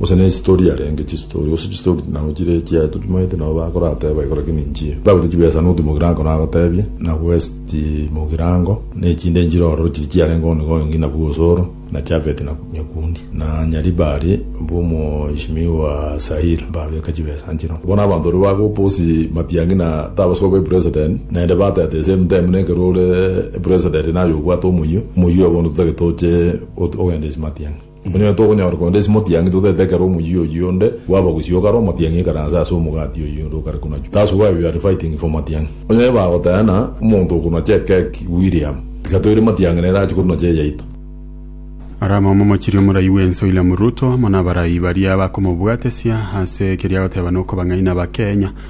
Gose nestori yarenge chistori gose chistori nabo chire echiaye tochimaete nabo bakorateba igo lakini inchie ntagwete chibesa nuti mogirango nagotebie na west mogirango nechinde nchire ororo chiri chiarenge one gone ngina bwa osoro na chafeti na nyakundi na nyaribari bwo moishimi wa sair babeka chibesa nchiro bono abanto baria bagoposi matiangi na tabasoa obe president naende batete the same time nekero ore president naye obwate omoyio omoyio bono totagete oche ogende ase matiangi. Onye tokonyora konde ase motiangi, totaete ekero omoyio oyio onde bwaba gusio kare omotiangi ikaranse ase omogati oyio onde okare kunachwa. That's why we are fighting for matiangi. Onye bagotena omonto okonacha ekeki William, tiga toire matiangi nere ache kotunacha eyaito. Ore omomo mochiri omoraai bw'ense William Ruto amo nabaraai baria bakomobwatesia ase ekeriagoteba nokobang'aina Abakenya.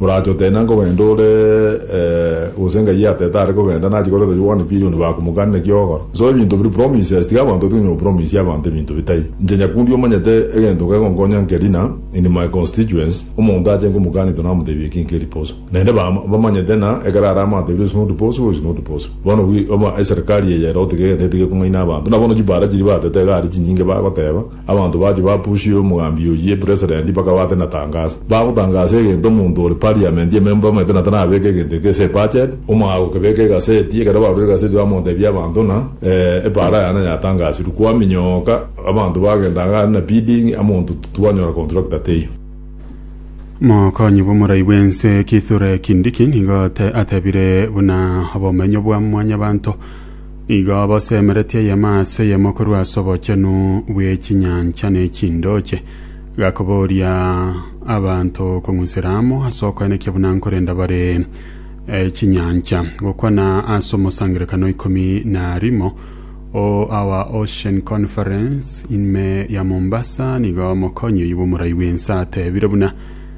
Morache oteena nkogenda ore, gose ngai atete are kogenda, nachi koreta chire one billion bakumokani naki ogora. So ebinto biri promises, tiga abanto batigane no promise abanto ebinto bitai. Inche nyakundi omanyete egento kegonkonya nke rina in my constituents, omonto ache nkomokani to namotebia eki nke riposo. Naende ba bamanyete na ekero are amatebire it's not possible, it's not possible. Bono wi oba eserikari eye ere otige egento etige kong'aina abanto. Buna bono chibara chiri batete iga are chinyinge bagoteba. Abanto bachia bapusia omogambi oyio epreserendi bakaba ate na tangasa. Bagotangasa egento omonto ore parliament ememba omanyete na tarabeeke egento eke ase ebudget, omogaka okebeeka egaseti, ekero barure egaseti bamotebia abanto ng'a ee epaara yane yatangasirwe. Kwaminyoka abanto bagenda ang'e are na bidding amonto twanyora contractor teiyo. Mokonyi bw'omorai bw'ense Kithure Kindiki nigo atebire buna obomenyo bwa mwanyabanto Igo bosemeretie eyemo ase eyemo korwa ase obochenu bwe chinyancha ne chindoche, gakoboria abanto kong'usera amo ase okoenekia buna nkorenda bare eh, chinyancha, gokwana ase omosangerekano ikomi na rimo o our Ocean Conference ime ya Mombasa, nigo omokonyi oyi bw'omorai bw'ense atebire buna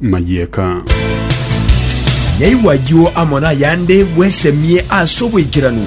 mayieka. Naigwa ayio amo nayande bwesemie ase oboikeranu.